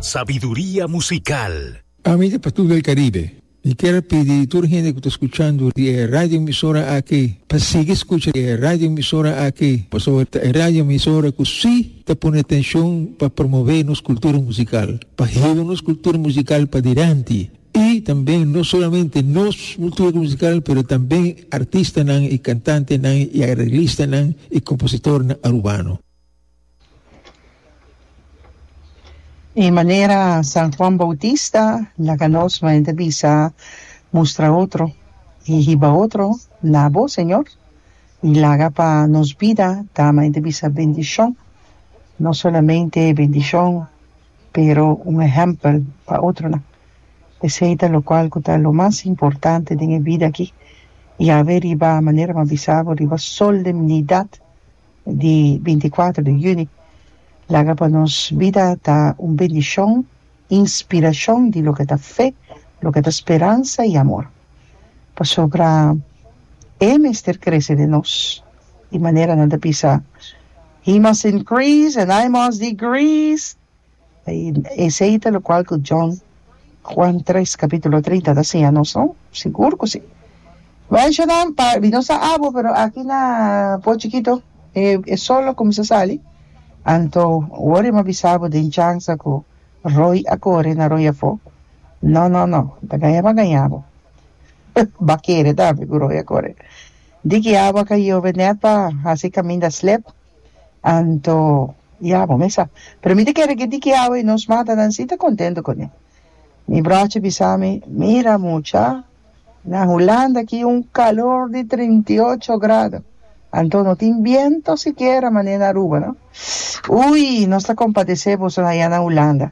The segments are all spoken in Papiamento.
Sabiduria musical. Pamilya pa tur el Caribe. Mi kier pidi tur hende ku ta skuchando di e radioemisora aki pa sigui skucha e radioemisora aki pasobra ta e radioemisora ku si ta pone atenshon pa promové nos kultura musikal, pa hiba nos kultura musikal pa dilanti i tambe no solamente nos kultura musikal pero tambe artistanan i kantantenan i areglistanan i kompositornan arubano. E manera San Juan Bautista laga nos ma en ta bisa, Mustra otro i hiba otro na bo, Señor, i laga pa nos bida ta ma en ta bisa bendishon, no solamente bendishon, pero un ehèmpel pa otronan. Esei ta lokual ku ta lo mas importante den e bida aki. I awe riba manera mi a bisa bo riba solemnidat di binticuatro di yüni laga pa nos bida ta un bendicion inspiracion di loke ta fe loke ta speransa y amor pasobra e mester crece den nos di manera nan ta bisa he must increase and I must decrease. I esei ta lokual ku Jon Juan tres kapítulo trinta ta siña nos no? Sigur ku si. Baishanan pa di nos a abo pero aki na po chikito e sol a kuminsá sali anto wòrdu mi a bisa bo den chansa ku roi a kore na roi afó no no no ta gaña bo a gaña bo ba kere tambe ku roi a kore di ki abo a ka yobe nèt pa hasi kaminda slèp. Anto, ya bo mesa. Pero mi ta kere ke diki awe nos matanan si ta kontento kuné. Mi brochi bisa mi, Mira mucha, na Hulanda aki un kalor di trinta i ocho grado, anto no tin biento sikiera mané na Aruba, no. Uy, nos ta kompadesé boso na ya na Hulanda.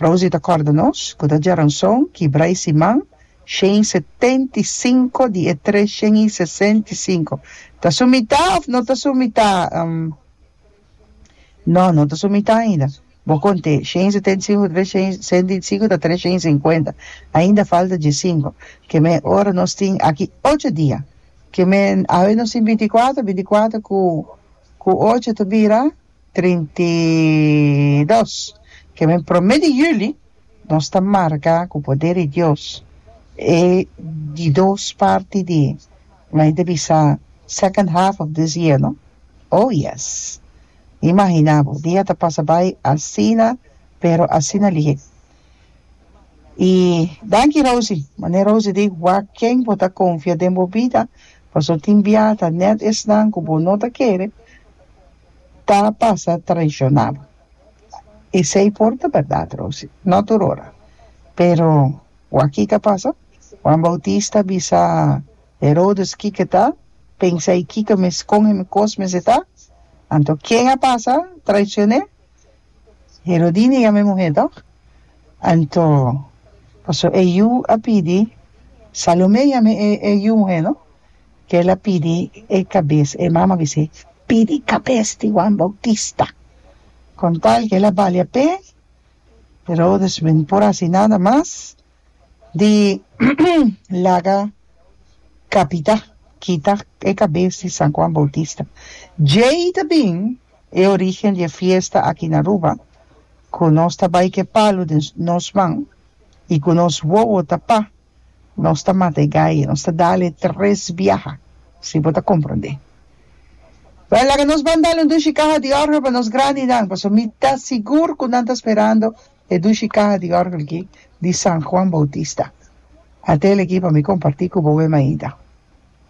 Rosie ta kòrda nos ku ta dja ranson ki brai si man shen setenta i sinku di e tres shen i sesenta i sinku. Ta su mitá òf no ta su mitá? Em, No, no ta su mitá ainda. Bo kont'é, shen i setenta i sinku ku tres shen i sesenta i sinku ta tres shen i sinkuenta. Ainda falta dies sinku. Kem'é ora nos tin aki ocho dia. Kem'é awe nos tin binti kuater, binti kuater ku ocho ta bira. Trinta i dos, kema e promé di juli nos ta marka ku poder di Dios e di dos parti di kuma hende bisa second half of this year no oh yes imagina bo dia ta pasa bai asina pero asina lihe i danki Rosy mane Rosy di wak ken bo ta konfia den bo bida pasobra tin bia ta nèt esnan ku bo no ta kere ta pasa traicionabo esey por ta berdad Rosy no tur ora pero wak kiko pasa Juan Bautista bisa Herodes kiko ta pensa e kiko mes con e cos mes e ta anto ken a pasa traicion'e Herodini yame muher to anto pasobra e yu a pidi Salome yame e yu muher no. Kel a pidi e kabes, e mama bis'é, Pidi kabes di Juan Bautista! Kon tal kel a balia p'é, Herodes bin por hasi nada mas di laga kapita, kita, e kabes di San Juan Bautista. Djei ta bin e orígen di e fiesta aki na Aruba, ku nos ta bai ku e palu den nos man i ku nos wowo ta pa. Nos ta mata e gaye, nos ta dale tres biaha, si bo ta komprondé. Bèn, laga nos ban dale un dushi kaha di òrgel pa nos grandinan, pasobra mi ta sigur ku nan ta sperando e dushi kaha di òrgel aki di San Juan Bautista. Atende aki pa mi kompartí ku bo wema ainda.